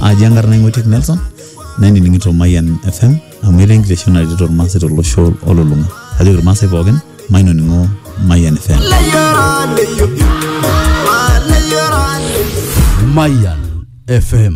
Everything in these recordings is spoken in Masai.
aji enkarna ing'oitiek nelson nainining'ito mayian fm amu etaa enkitesheni naretito irmaasai tolosho olulung'a ajoki irmaasai pookin mainoning'o mayian fm Mayan FM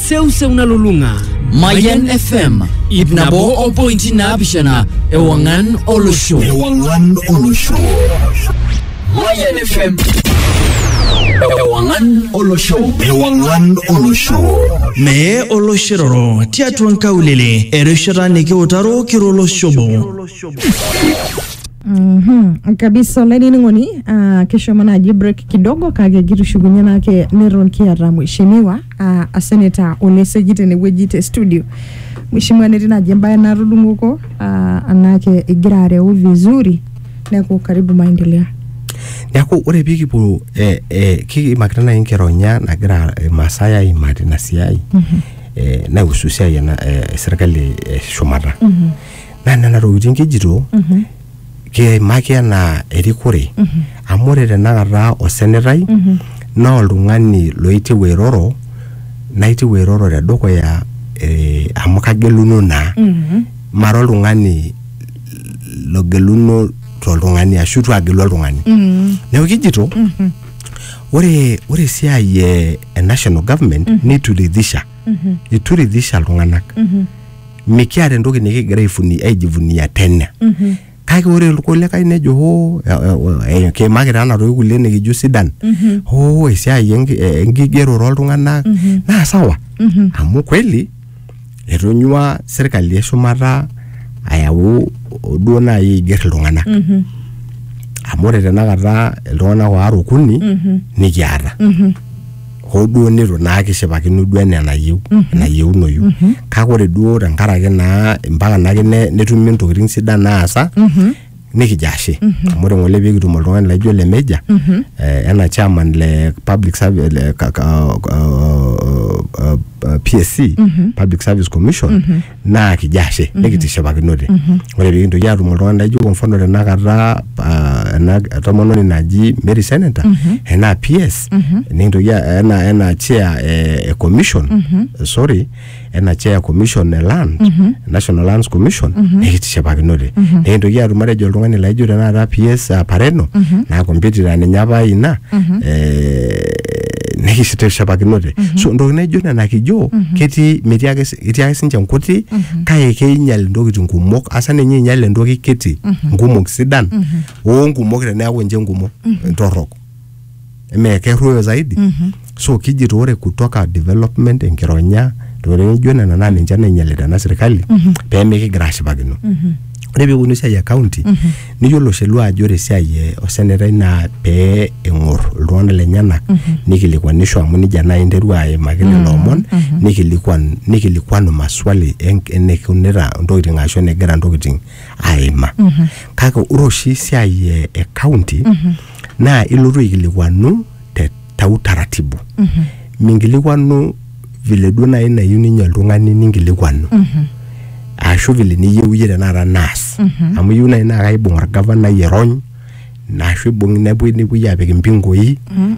seuseu nalulung'a Mayan FM ip nabo o pointi naapishana ewang'an olosho. Ewang'an olosho. Mayan FM. Ewang'an olosho. Ewang'an olosho. Mee oloshiroro tiatua nkaulele erishata nikiutaro kiro olosho obo. Mhm, kabisa olainining'oni ah, kishomo naaji break kidogo kake kitushukunye naake neton kiata mheshimiwa uh, a senator Oleseki tenewueji te studio. Mheshimiwa netii naaji embae natudung'oko uh, anake igira areu vizuri neeku karibu maendelea. neaku ore pikipuo eh, eh, kiimakita nai nkironya nagira imaasai aimaa tina siai eh, naihusu siai ena eh, serkali eh, shumata naa nena tokitin kijito kiimaki anaa erikore amu ore tenakata osenetai naa oltung'ani loitieu airoro naitieu airoro tedukuya eh, amu kageluno naa mara oltung'ani logeluno toltung'ani ashu itu agelu oltung'ani neeku kijito ore ore esiai e, e national government nituridhisha ituridhisha iltung'anak mikiata entoki nikigira aifuni- aijivunia tena kake ore irkulikae nejo hoo eh, eh, eh, kiimaki taa enatoki kulie nikijo sidan hoo esiai enki- eh, enkigerore oltung'anak naa sawa amu kweli etonyua serkali eshumata ayau duo naaji aiger iltung'anak amu ore tenakata iltung'anak waare okuni nikiata hoo duo nitu naa kishipakino duo enaa enayieu enayieunoyu kake ore duo tenkaraki naa mpaka naake ne- netumi ntokitin sidan naasa nikijo ashe amu ore ng'ole pikitum oltung'ani laijo ole meja eh, ena chairman le public service le ka- ka- uh, uh, uh, PSC public service commission naa kijo ashe nikitishipakinote ore pikintoki atum oltung'ani laijo kwa mfano tenakata ah, ena tomononi naji Mary Seneta enaa PS nikintoki a- ena ena chair eh, e commission sorry ena chair commission e land National Lands Commission nikitishipakinote nikintoki atum matejo oltung'ani laijo tenakata PS ah, Pareno naa competitor ninye apa ina eh, nikitishipakinote so ntokitin naijo nena kijo ketii metii ake si- etii ake sinche nkuti kake keinyal intokitin kumok asa ninye einyal entoki kiti nkumok sidan oo nkumok teneeku ninche nkumok torrok emee kerruoyo zaidi so kijito ore kutoka development enkironya ntokitin naijo nena naa ninche nainyialita ena sirkali pee mikigira ashipakino ore pee epuonu esiai e county Niyiolo Shelua ajo ore esiai e osenetai naa pee eng'or iltung'anak lenyenak nikilikuanisho amu nijia naaji interua aimaki lelo omon nikilikuan nikilikuanu maswali en- enikunita intokiting ashu enegira intokiting aima. Kake ore oshi esiai e e county naa ilotu aikilikuanu te tau taratibu mm -hmm. minkilikwanu vile duo naaji nayieu ninye oltung'ani ninkilikwanu mm -hmm. ashu vile niyieu iyie tenakata naas mm -hmm. amu iyieu naaji naa kaibung orgavanai erony ashu ibung nepuoi nepuoi apik impingoi mm -hmm.